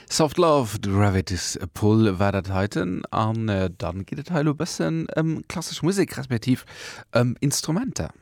Soft Love, The Gravity's Pull war dat heiten. An dann geet et hei elo e bëssen ëm klassesch Musek, respektiv ëm Instrumenter.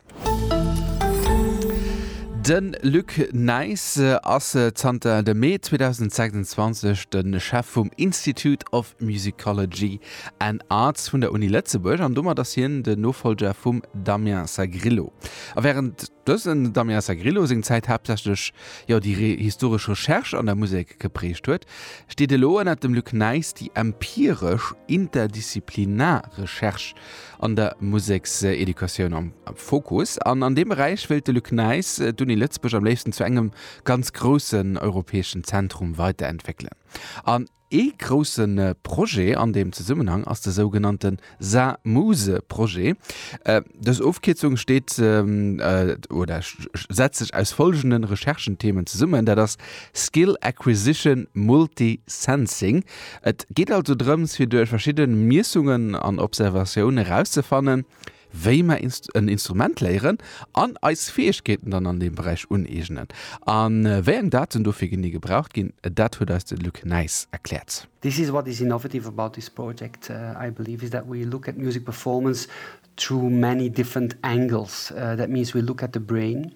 De Luc Nys ass zanter dem Mee 2026 de Chef vum Institute of Musicology and Arts vun der Uni Lëtzebuerg an domat ass hien de Nofolger vum Damien Sagrillo. A wärend dësen Damien Sagrillo seng Zäit haaptsächlech jo déi historesch Recherche an der Musek geprägt huet, steet elo ënner dem Luc Nys déi empiresch interdisziplinar Recherche an der Musekseducatioun am Fokus. An an deem Beräich wéilt de Luc Nys d'Uni Lëtzebuerg am léifsten zu engem ganz groussen europäeschen Zentrum weiterentwéckelen. An. Ee grousse Projet an deem Zesummenhang ass de sougenannte Sa-Muse-Projet. Dës Ofkierzung steet oder setzt sech aus follgende Recherchenthemen zesummen, dat ass Skill Acquisition Multi-Sensing. Et geet also drëms, fir duerch verschidde Miessungen an Observatioun erauszefannen, wéi mer en Instrument léieren an eis Fäegkeeten dann an deem Beräich uneegnen a wéi eng Daten dofir genee gebraucht ginn, dat huet eis de Luc Nys erkläert. This is what is innovative about this project, I believe, is that we look at music performance through many different angles. That means we look at the brain.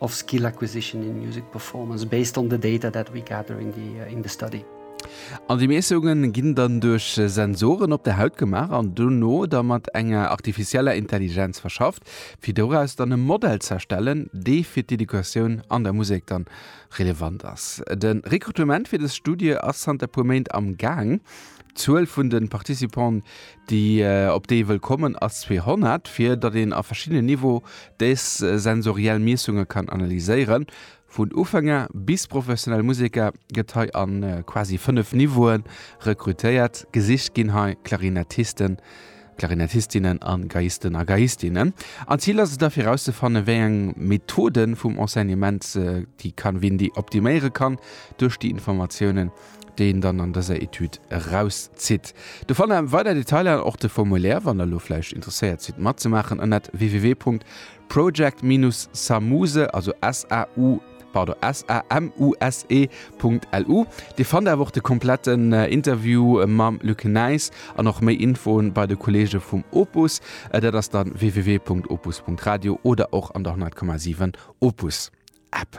of skill acquisition in music performance based on the data that we gather in the in the study. An déi Miessungen ginn dann duerch Sensoren op der Haut gemaach an dono da mat enger artificieller Intelligenz verschafft, fir doraus dann e Modell ze erstellen, dee fir d'Educatioun an der Musek dann relevant ass. De Rekrutement fir dës Studie ass zanter e puer Méint am Gaang. D'Zuel vun de Participante Déi, op déi ee wëll kommen, ass 200, fir datt een a verschiddenen Niveau dës sensoriell Miessunge kann analyséieren. Vun Ufänger bis professionell Museker gëtt hei a quasi 5 Niveaue rekrutéiert. Gesicht ginn hei Klarinettisten, Klarinettistinen a Geiisten a Geistinnen. An d'Zil ass et da fir erauszefannen, wéi eng Methode vum Enseignement déi kann Windy optiméiere kann duerch déi Informatiounen, déi een dann an dëser Etüd erauszitt. Do fannt der weider Detailer an och de Formulaire, wann der elo vläicht interesséiert sidd matzemaachen, ënnert www.project-samuse, also S-A-U, pardon, S-A-M-U-S-E, .lu. Dir fannt awer och de kompletten Interview mam Luc Nys an och méi Infoen bei de Kollege vum Opus. Dat ass dann www.opus.radio oder och an der 100,7 Opus App.